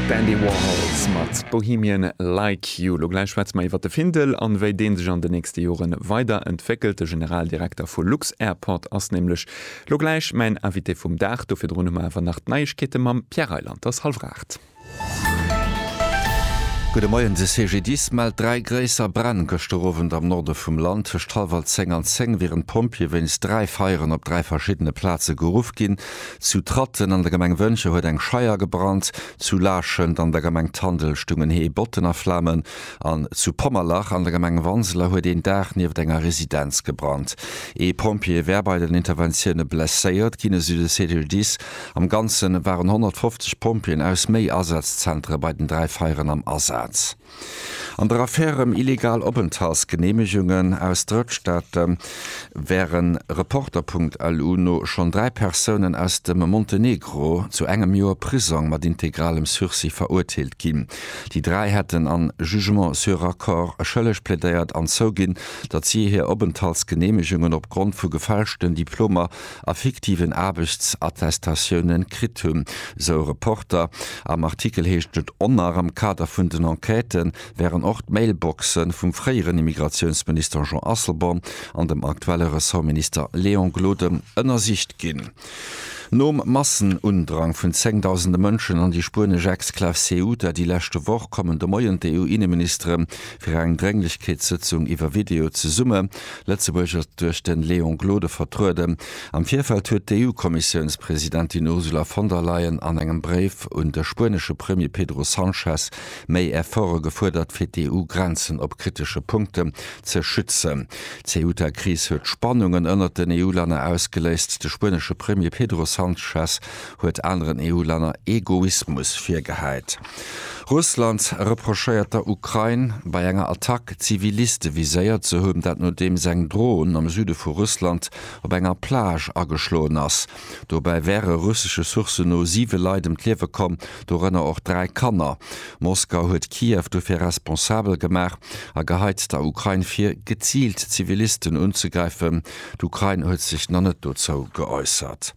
D'Andy Warhols mat Bohemian Like You. Lo gläich schwätze mer iwwer de Findel an wéi dee sech an de nächste Jore weider entwéckelt. De Generaldirekter vu Lux-Airport ass nämlech lo gläich mäin Invité vum Dag. Do virdrun hu mer awer nach d'Neiegkeete mam Pierre Reyland. Et ass hallwer 8. Gudde Moien. De CGDIS mellt dräi gréisser Bränn gëschter Owend am Norde vum Land. Tëscht hallwer 10 an 10 wieren d'Pompjeeë wéinst dräi Feieren op dräi verschiddene Plaze geruff ginn. Zu Tratten an der Gemeng Wëncher huet eng Scheier gebrannt, zu Laarschent an der Gemeng Tandel stungen Hee, Botten a Flamen an zu Pommerlach an der Gemeng Wanseler huet een Daach nieft enger Residenz gebrannt. Ee Pompjee wär bei den Interventioune blesséiert ginn, esou de CGDIS. Am Ganze waren 150 Pompjeeën aus méi Asazzentere bei den dräi Feieren am Asaz. An der Affär ëm illegal Openthaltsgeneemegungen aus Drëttstaate wäre Reporter.lu no schonn dräi Persounen aus dem Montenegro zu engem Joer Prisong mat integralem Sursis verurteelt ginn. Déi dräi hätten a Jugement sur accord schëlleg plädéiert an zouginn, datt si hir Openthaltsgeneemegungen opgrond vu gefälschten Diplomer a fiktiven Aarbechtsattestatiounen kritt hunn, sou e Reporter. Am Artikel heescht et onner, am Kader vun den Enquête wären och d'Mailboxe vum fréieren Immigratiounsminister Jean Asselborn an dem aktuelle Ressortminister Léon Gloden ënnersicht ginn. Nom Massenundrang vun zéngdausende Mënschen an déi spuenesch Exklav Ceuta déi leschte Woch, kommen de Moien d'EU-Inneministere fir eng Drénglechkeetssëtzung iwwer Video zesumme. Lëtzebuerg ass duerch de Léon Gloden vertrueden. Am Virfeld huet d'EU-Kommissiounspresidentin Ursula von der Leyen an engem Bréif un de spuenesche Premier Pedro Sanchez méi Efforte gefuerdert, fir d'EU-Grenzen op kritesche Punkten ze schützen. D'Ceuta-Kris huet Spannungen ënnert den EU-Länner ausgeléist. De spuenesche Premier Pedro Sanchez huet aneren EU-Länner Egoismus virgehäit. Russland reprochéiert der Ukrain, bei enger Attack Ziviliste viséiert ze hunn, dat nodeems eng Dron am Süde vu Russland op enger Plage ageschloen ass. Dobäi wäre russesche Sourcen no siwe Leit ëm d'Liewe komm, dorënner och dräi Kanner. Moskau huet Kiew dofir responsabel gemaach a geheit der Ukrain vir, geziilt Zivilisten unzegräifen. D'Ukrain huet sech nach net dozou geäussert.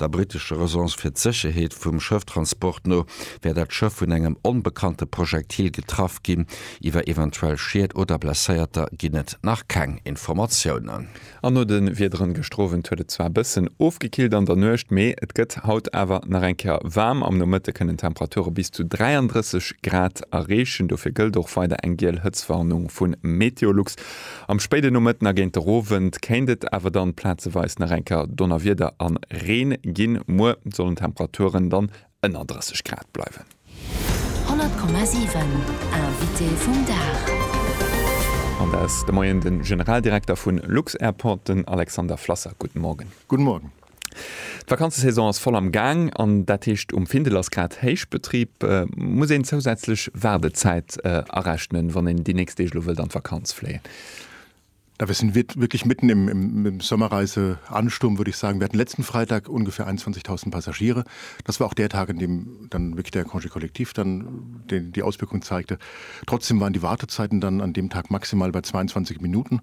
Der brittescher Agence fir d'Sécherheet vum Schëfftransport no wär dat Schëff vun engem onbekannte Projektil getraff ginn. Iwwer eventuell Schied oder Blesséierter ginn et nach keng Informatiounen. An no de Wiederen gëschter Owend huet et zwar e bëssen ofgekillt an der Nuecht, mee et gëtt haut awer nach eng Kéier waarm. Am Nomëtte kënnen d'Temperature bis zu 33 Grad erreechen. Dofir gëllt och weider eng giel Hëtztwarnung vu Meteolux. Am spéiden Nomëtten a géint der Owend kéint et awer dann plazeweis nach enker Donnerwieder an Reen ginn. Muer sollen Temperaturen dann ënner 30 Grad bleiwen. 100,7 Invité vum Dag. An der ass de Moien den Generaldirekter vun Lux-Airport, den Alexander Flasser. Gudden Morgen. Gudden Morgen. D'Vakanzesaison ass voll am Gaang an dat heescht um Findel ass grad Héichbetrib. Muss een zousätzlech Waardezäit arechnen, wann een déi nächst Deeg lo wëllt an d'Vakanz fléien? Da wir sind wirklich mitten im Sommerreise-Ansturm, würde ich sagen. Wir hatten letzten Freitag ungefähr 21.000 Passagiere. Das war auch der Tag, an dem dann wirklich der Congé collectif dann die Auswirkung zeigte. Trotzdem waren die Wartezeiten dann an dem Tag maximal bei 22 Minuten.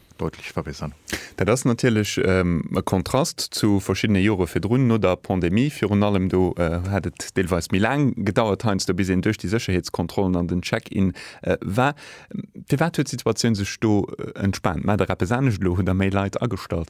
deutlech verbessern. Dat ass natierlech e Kontrast zu verschiddene Jore virdrun, no der Pandemie virun allem. Do hat et deelweis méi laang gedauert heiansdo, bis een duerch déi Sécherheetskontrollen an den Check-in war. Firwat huet d'Situatioun sech do entspaant? Maacht Der eppes anescht elo? Hutt Der méi Leit agestallt?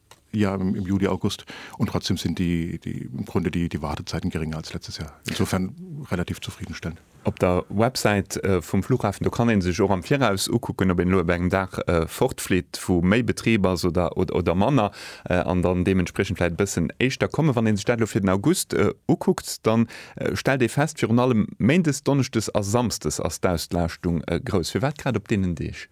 Ja, im Juli, August. Und trotzdem sind die, die, im Grunde die, die Wartezeiten geringer als letztes Jahr. Insofern relativ zufriedenstellend. Op der Websäit vum Flughafen, do kann ee sech och am Viraus ukucken, ob een elo op engem Dag fortflitt, wou méi Betrib ass oder, oder manner, an dann deementspriechend vläicht e bëssen éischter kommen. Wann ee sech dat elo fir den August ukuckt, da stellt ee fest, virun allem méindes, donneschdes a samsdes ass d'Auslaaschtung grouss. Firwat grad op deenen Deeg?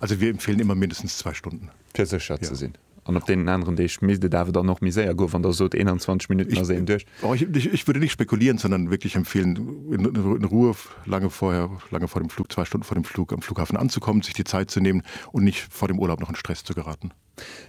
Also wir empfehlen immer mindestens zwei Stunden. Fir sécher ze sinn. An op deenen aneren Deeg misst et awer dann och méi séier goen, wann Der sot 21 Minutten ass een duerch. Ich würde nicht spekulieren, sondern wirklich empfehlen, in Ruhe lange vorher, lange vor dem Flug, zwei Stunden vor dem Flug am Flughafen anzukommen, sich die Zeit zu nehmen und nicht vor dem Urlaub noch in Stress zu geraten.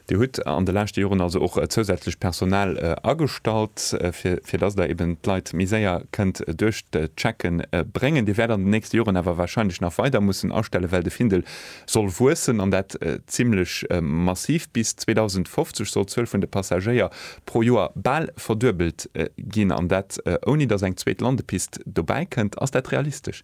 Dir hutt an de leschte Joren also och zousätzlecht Personal agestallt, fir dass Der eben d'Leit méi séier kënnt duerch d'Checke bréngen. Dir wäert an den nächste Joren awer warscheinlech nach weider mussen astellen, well de Findel soll wuessen, an dat zimmlech massiv. Bis 2050 soll d'Zuel vun de Passagéier pro Joer bal verduebelt ginn, an dat ouni dass eng zweet Landepist dobäi kënnt. Ass dat realistesch?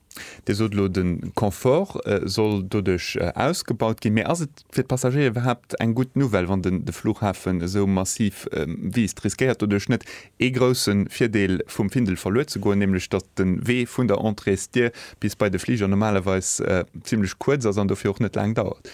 Dir sot elo, de Confort soll doduerch ausgebaut ginn. Mee ass et fir d'Passagéier iwwerhaapt eng gutt Nouvelle, wann den de Flughafen esou massiv wiisst? Riskéiert doduerch net ee grousse Virdeel vum Findel verluer ze goen, nämlech datt de Wee vun der Entréesdier bis bei de Fliger normalerweis zimlech kuerz ass an dofir och net laang dauert?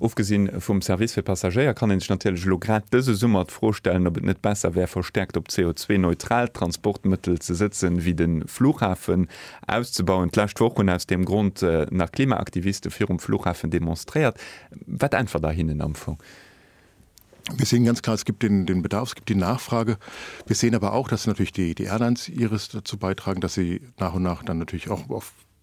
Ofgesinn vum Service fir Passagéier kann ee sech natierlech elo grad dëse Summer d'Fro stellen, ob et net besser wär, verstäerkt op CO2-neutralt Transportmëttel ze sëtzen, wéi de Flughafen auszebauen. D'lescht Woch hunn aus deem Grond nach Klimaaktiviste virum Flughafen demonstréiert. Wat äntwert Der hinnen am Fong? Mir sehen ganz klar, es gibt den Bedarf, es gibt die Nachfrage. Wir sehen aber auch, dass natürlich die Airlines ihres dazu beitragen, dass sie nach und nach dann natürlich auch auf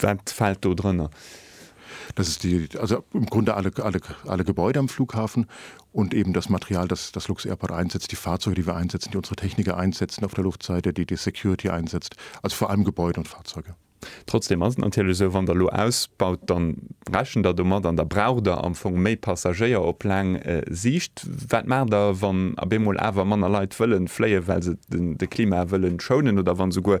Wat fält do drënner? Dat ass déi, also am Grunde alle, alle, alle Gebäude am Flughafen und eben das Material, das, das lux-Airport einsetzt, déi Fahrzeuge, déi wir einsetzen, déi unsere Techniker einsetzen auf der Luftseite, déi déi Security einsetzt, also vor allem Gebäude und Fahrzeuge. Trotzdem ass et natierlech esou, wann Der elo ausbaut, da rechent Der domat an da braucht Der am Fong méi Passagéier op laang Siicht. Wat maacht Der, wann abemol awer manner Leit wëlle fléien, well se de Klima wëlle schounen oder wann esouguer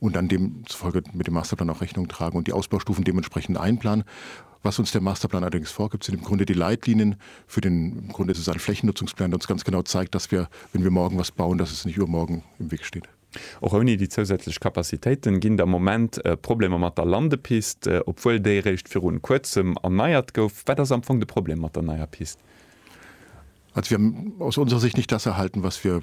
und dann demzufolge mit dem Masterplan auch Rechnung tragen und die Ausbaustufen dementsprechend einplanen. Was uns der Masterplan allerdings vorgibt, sind im Grunde die Leitlinien für den, im Grunde ist es ein Flächennutzungsplan, der uns ganz genau zeigt, dass wir, wenn wir morgen was bauen, dass es nicht übermorgen im Weg steht. Och ouni déi zousätzlech Kapazitéiten ginn der Moment Problemer mat der Landepist, obwuel déi eréischt virun Kuerzem erneiert gouf. Wat ass am Fong de Problem mat der neier Pist? Also wir haben aus unserer Sicht nicht das erhalten, was wir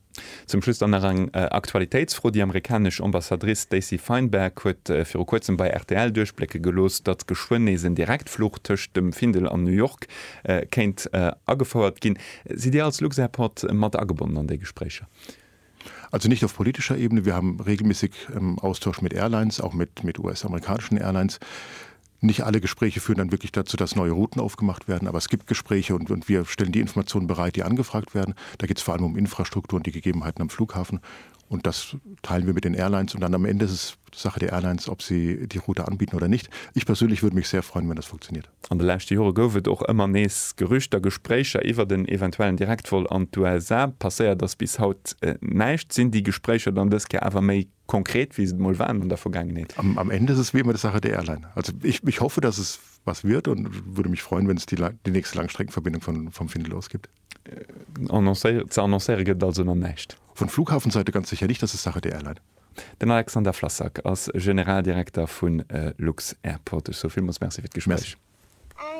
Zum Schluss dann nach eng Aktualitéitsfro, Déi amerikanesch Ambassadrice Stacey Feinberg huet viru kuerzem bei rtl duerchblécke gelooss, datt geschwënn nees en Direktfluch tëscht dem Findel an New York kéint agefouert ginn. Sidd Dir als Luxairport mat agebonnen an déi Gespréicher? Also nicht auf politischer Ebene, wir haben regelmäßig Austausch mit Airlines, auch mit US-amerikanischen Airlines. Nicht alle Gespräche führen dann wirklich dazu, dass neue Routen aufgemacht werden, aber es gibt Gespräche und wir stellen die Informationen bereit, die angefragt werden. Da geht es vor allem um Infrastruktur und die Gegebenheiten am Flughafen, und das teilen wir mit den Airlines, und dann am Ende ist es Sache der Airlines, ob sie die Route anbieten oder nicht. Ich persönlich würde mich sehr freuen, wenn das funktioniert. An de leschte Jore gouf et och ëmmer nees Gerüchter, Gespréicher iwwert en eventuellen Direktvol an d'USA. Passéiert ass bis haut näischt. Sinn déi Gespréicher dann dës Kéier awer méi konkret wéi se emol waren an der Vergaangenheet. Am End ist es wie immer die Sache der Airline. Also ich, ich hoffe, dass es was wird und würde mich freuen, wenn es die, die nächste Langstreckenverbindung von, vom Findel aus gibt. Äh, annoncéiert, ze annoncéiere gëtt also nach näischt. Vun Flughafenseite ganz sécher nicht, dass es Sache der Airline. Den Alexander Flassak ass Generaldirekter vun äh, lux-Airport. Ech soe villmools Merci fir d'Gespréich. Merci.